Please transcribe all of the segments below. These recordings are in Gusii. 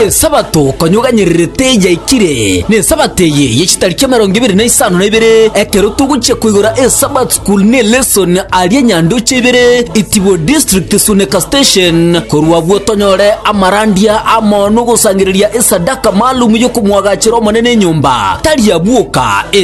Esabato konyuganyererete yaikire, n'Esabato eye ye chitariki emerongo ebere na isano na ibere, ekero togochia koigora eSabbath School ne lesson aria Nyandoche ibere, Itibo District, Suneka Station. Korwa agwo tonyore amarandia amo nogosangereria esadaka maalum yokomwagachera Omonene enyomba, tari abwoka,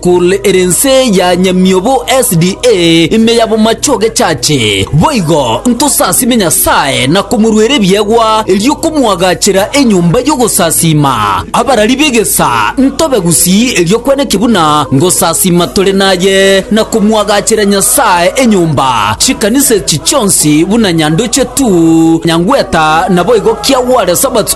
Kore ere ense ya nyamiobo SDA ime ya bomache ogechache, boigo ntosasime Nyasae na komoruera ebiegwa, erio komoagachera enyomba y'ogosasiima. Abarari b'egesa ntobe gusii erio kweneki buna ngosasiima tore naye, na komoagachera Nyasae enyomba, chikanisa echi chionsi buna nyandoche tu, nyangweta, naboigo kiagware Sabato.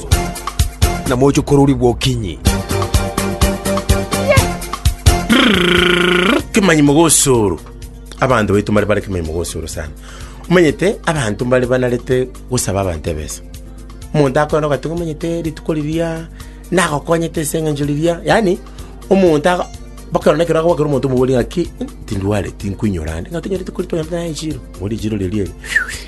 na moche kororigwa okinyi. kemanyi mogosoro abanto baito mbare bare kemanyi mogosoro sana omanyete abanto mbare banarete gosaba abanto ebesa omonto akoenda ogateba omanyete rituko riria nagokonyete ase eng'encho riria yaani omonto aka baka nekero agoakera omonto omobori ng'aki "Ih, tindwareti nkoinyora ande ng'a tonyore rituko ri tonyore naye echiro mori echiro riria eri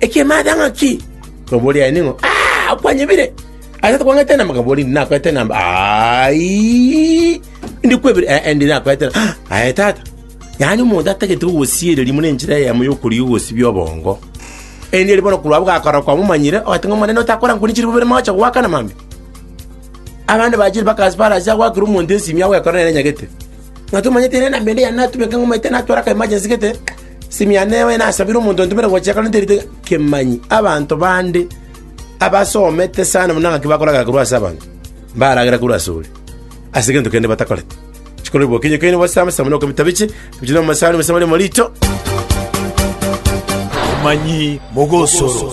Ekimaadha ng'aki? Baboria aye ning'o? Aa, okwanyebire! Ase tokwang'aete enamba? Kaboria, Indi nakoete enamba. Aii, indi kwebire? Ee, indi nakoete enamba. Ah, aye tata. Yaani omonto atagete gogosiereria muna enchera eyemo y'okorigia ogosibia obongo. Endi eri bono korwa abwo gakora kwamomanyire, ogate ng'a Omonene otakora nkuni chiri bobere mocha goakana mambia. Abande bachire bakasipara ase agoakera omonto esimi agwekora nere enyagete. Ng'a tomanyete ere enamba ende yane natumeka ng'omaete natwara ka emergency gete, Simia newe nasabire omonto ontomere gochia kare nterite kemanyi abanto bande abasomete sana buna ng'aki bakoragera korwa ase abanto, mbaragere korwa asore ase egento kende batakoreti. Chikore bokenyi okenye bosesame sesame na okobita biche, ebiche na omosaani bosesame rimo riicho. Omanyi mogosoro.